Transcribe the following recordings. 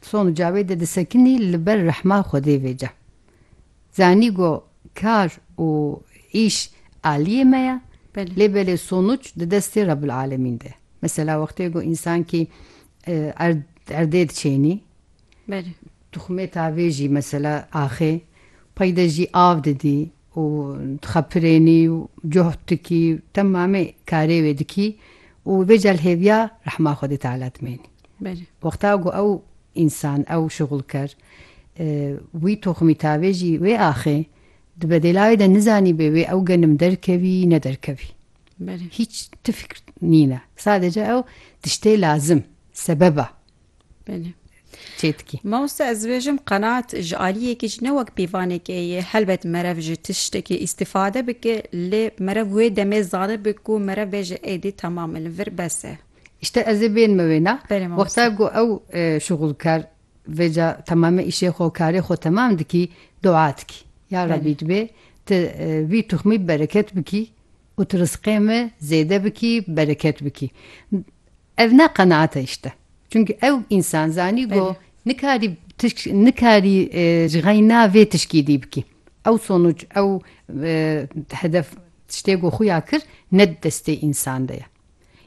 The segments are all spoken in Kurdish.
Som Cavêdê disekinî li ber rehma Xwedê vê ca. Zanî go kar û îş aliyê me ye lê belê sonuc di destê Rebbil Alemîn de ye. Mesela wextê go însankî erd erdê diçênî tuxmê tavê jî mesela axê peyde jî av didî û dixepirênî û cohd dikî û temamê karê wê dikî û vê cel hêviya rehma Xwedê Teala dimênî. Belê. Wexta ku ew însan, ew şixulker wî toximî tavê jî wê axê di bedêla wê de nizanîbê wê ew genim derkevî ne derkevî. Belê. Hîç ti fikr nîne. Sadece ew tiştê lazim, sebeba. Belê. Çêdikî. Mamoste ez dibêjim qenaat ji aliyê yekê jî ne wek pîvanekê ye. Helbet merev ji tiştekê îstîfade bike lê merev wê demê zanibe ku merev bêje êdî temam e li vir bes e. Îşte ez ê bênime wêna. Belê mamoste. Wexta ku ew şuxulker vê ca temamê îşê xwe û karê xwe temam dikî dua dikî. Ya Rebî divê tu vî tuxmî bereket bikî û tu rizqê min zêde bikî bereket bikî. Ev ne qenaate îşte. Çunki ew însan zanî go nikarî tişk nikarî ji xeyna vê tişkî dî bikî. Ew sonuc ew hedef tiştê ku xwe ya kir ne di destê însan de ye.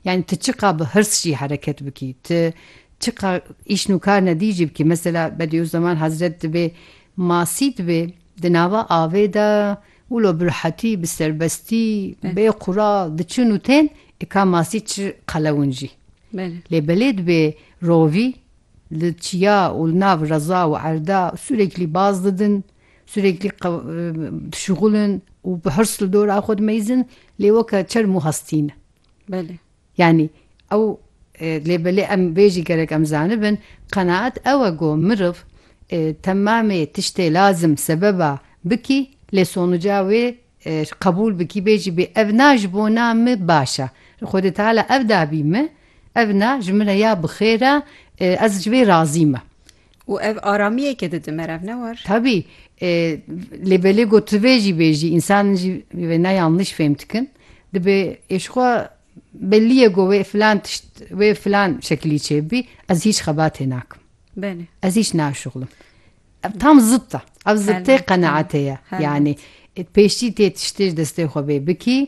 Yani tu çiqa bi hirs jî hereket bikî, tu çiqa îş nûkar nedî jî bikî. Mesela Bediüzzeman Hezret dibê masî dibê di nava avê de, Wilo bi rehetî, bi serbestî, bê qural diçin û tên ê ka masî çi qelewin jî. Lê belê dibê rovî li çiya û li nav reza û erda sûreklî baz didin, sûreklî dişuxulin û bi hirs li dora xwe dimeyzin lê weke çerm û hestî ne. Yanî ew lê belê em vê jî gerek em zanibin, qenaet ew e ku miriv temamê tiştê lazim, sebeba, bikî lê sonuca wê ji qebûl bikî bê jî bê ev na ji bo na me baş e. Xwedê teala ev dabî me, ev na ji min re ya bi xêr e, ez ji vê razî me. û ev aramiyeke dide me rev ne war? Tabî e, lê belê got tu vê jî bêjî însan jî vê ne yanlış fêm dikin. Dibê êşxwa belliye go wê filan tişt wê filan şekilî çêbî ez hiç xebatê nakim. Belê. Ez hiç naşuxlim. Ev tam zıt da. Ev zıttê qenaatê ye. Yani e, pêşî tê tiştê ji destê xwe bê bikî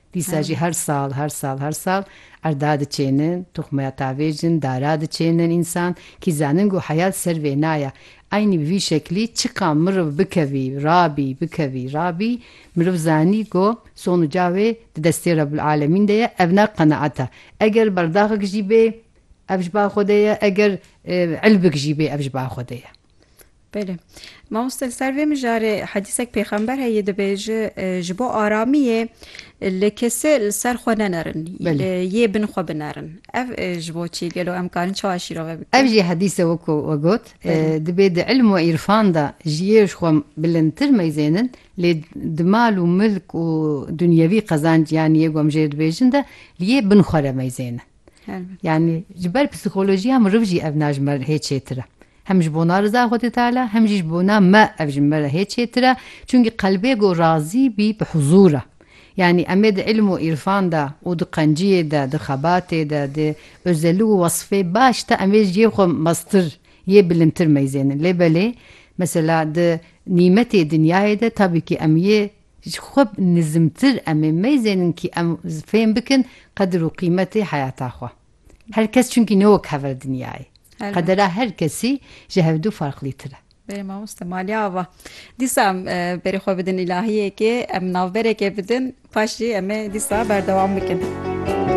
Dîsa jî her sal, her sal, her sal erda diçênin, toxmaya tavê jin, dara diçênin însan. Kî zanin ku heyat ser vê naya. Eynî bi vî şeklî çiqan mirov bikevî, rabî, bikevî, rabî, mirov zanî ku son û ca wê di destê Rebûlealemîn de ye, ev ne qenaet e. Eger berdaxek jî bê, ev ji ba Xwedê ye, eger ilbik jî bê, ev ji ba Xwedê ye. Belê. Mamoste li ser vê mijarê hedîsek pêxember heye dibêje ji bo aramiyê li kesê li ser xwe nenerin. Belê. Yê bin xwe binerin. Ev ji bo çi gelo em karin çawa şîrove bikin? Ev jî hedîse wekû we got dibê di ilm û îrfan de ji yê ji xwe bilindtir meyzênin lê di mal û milk û dunyewî qezanc yanî yê ku em ji yê dibêjin de li yê bin xwe re meyzênin. Helbet. Yanî ji ber psîkolojiya miriv jî ev najmer hê çêtir e. Hem ji bona riza Xwedê Teala hem jî ji bona me ev ji me re hê çêtir e, çunkî qelbê ku razî bî bi huzûr e. Yanî em ê di îlm û îrfan de û di qenciyê de, di xebatê de, di ozeli û wesfê baş de em ê ji yê xwe meztir, yê bilindtir meyzênin. Lê belê mesela di nîmetê dinyayê de tabîkî em yê ji xwe nizimtir em ê meyzênin kî em fêm bikin qedir û qîmetê heyata xwe. Her kes çünkü ne wek hever dinyayê. Qedera her kesî ji hevdû farqlîtir e. Bê mamoste maliye ava. Dîsa em e, berê xwe bidin îlahiyekê, em navberekê bidin, paşî em ê dîsa berdewam bikin.